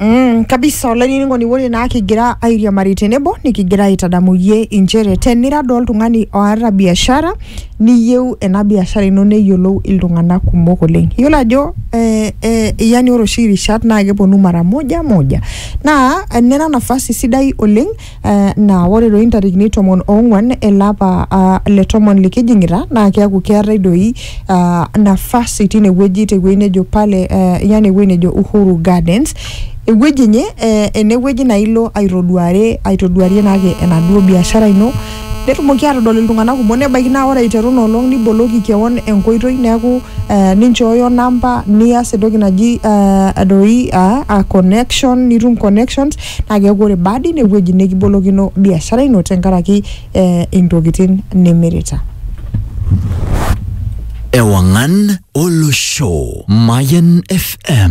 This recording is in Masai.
Mm, kabisa olainining'oni ore naa kigira airiamari tenebo nikigira aitadamu iyie inchere tenira doo oltung'ani oata biashara niyieu ena biashara ino neyiolou iltung'anak kumok oleng iyiolo ajo eh, eh, yani ore oshi irishat naa keponu mara moja moja naa enira nafasi sidai oleng Eh, naa ore doi intarikini tomon oong'uan ele apa ah, le tomon likijing'ita naa keeku keetae doi ah, nafasi tine wueji te wueji nejo pale eh, yani ewueji nejo Uhuru Gardens ewueji enye eh, ene wueji naa ilo aitoduare aitoduarie naake enaduo biashara ino netumoki atodol iltung'anak kumok nebaiki naa ore aiteru ina olong niboloki kewon enkoitoi neeku eh, ninchooyo namba nias entoki naji eh, doi ah, ah, connection nitum connections naa keeku ore baada ine wueji nikibolokino biashara ino tenkaraki eh, intokitin nimirita. Ewangan Olosho Mayan FM